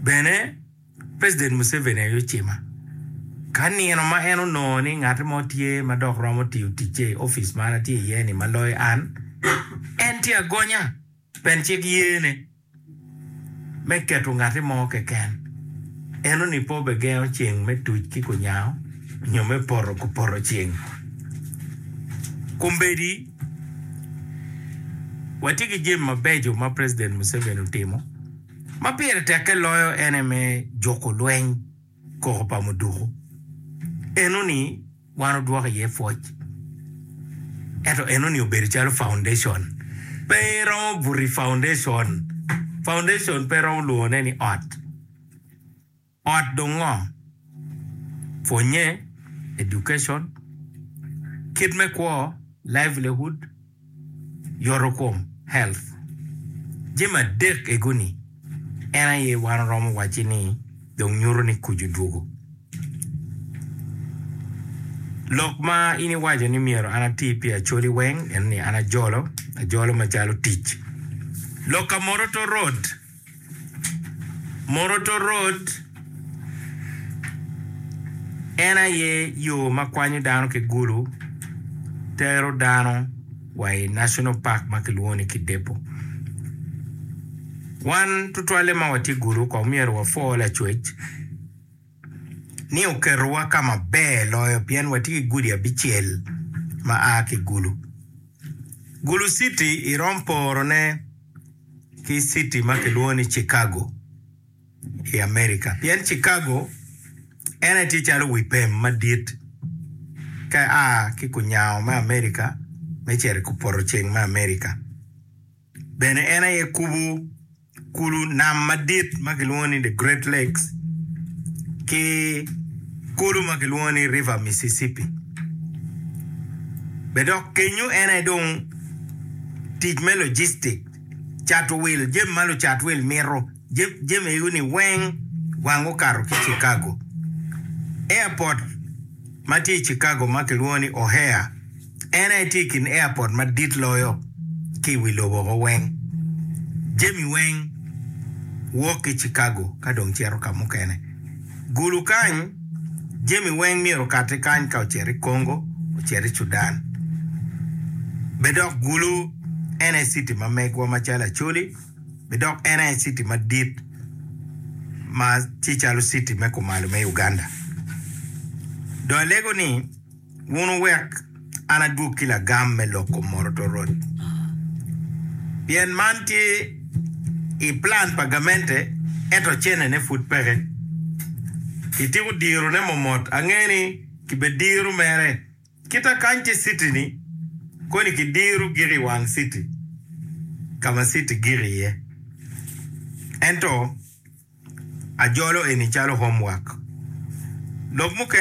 Bene, President Museveni aye ocima ka nino ma en onongo ni ngat mo tye ma dok romo tiyo ticce i office ma an atye iye ni ma loyo an. En tye agonya pien cik yene me keto ngat mo keken. Eno ni pe obegengo ceng me tuc ki kunyango nyo me poto kupoto ceng. Kombeddi. Watye ki jami mabeco ma president Museveni otimo ma pire tekke loyo en aye me juko lweny koko pa muduku. Eno ni wan odwoko iye pwoc ento eno ni obedo calo foundation pe iromo buto i foundation, foundation pe iromo lwongo ne ni ot. Ot dong ngo? Pwonye, education, kit me kwo, livelihood, yotokom, health. Jami adek ego ni en aye wan oromo wacci ni dong nyuto ni kuc odwogo. Lok ma in iwaco ni myero an ati pi Acholi weng eno ni an ajolo, ajolo macalo tic. Lok ka Moroto road. Morotorot en aye yo ma kwanyo dano ki gulu tero dano wa i National Park ma kilwongo ni Kidepo. Wan tutwalle ma watye gulu kong myero wapwo lacwec. ni oketowa ka maber loyo pien watye ki gudi abicel ma a ki i Gulu. Gulu citi irom porone ki citi ma kilwongo ni Cikago i Amerika pien Cikago en aye tye calo wi pem madit ka ia ki kunyango me Amerika me cito i kupoto ceng me Amerika. Bene en aye kubo kulu nam madit ma kilwongo ni The Great Lakes ki kulu ma kilwongo ni River Mississippi. Bene dok kenyo en aye dong tic me logistic, cato wil, jami ma lucat wil mito. Jamiguni weng wang okato ki Chicago. Airport ma tye i Chicago ma kilwongo ni O'Hare en aye tye i kin airport madit loyo ki i wi lobo woko weng. Jami weng wok ki Chicago ka dong cito ka mukene. Gulu kany, jami weng myero okati kany ka ocito i Congo, ocito i Sudan. Bed dok Gulu en aye citi ma megwa macalo Acholi. bidok en aye citi madit ma tye calo citi me kumalo me Uganda. Dong alego ni, Wun wuwek an adwog ki lagam me loko Moroto Road, pien man tye i plan pa gamente ento cennene pud peke. Kitiko dirone momot, angeyo ni kibediro mere. Kita kany ki citi-ni koni kidiro gik i wang citi ka ma citi gik iye. Ento ajolo eni calo homework. Lok mukene.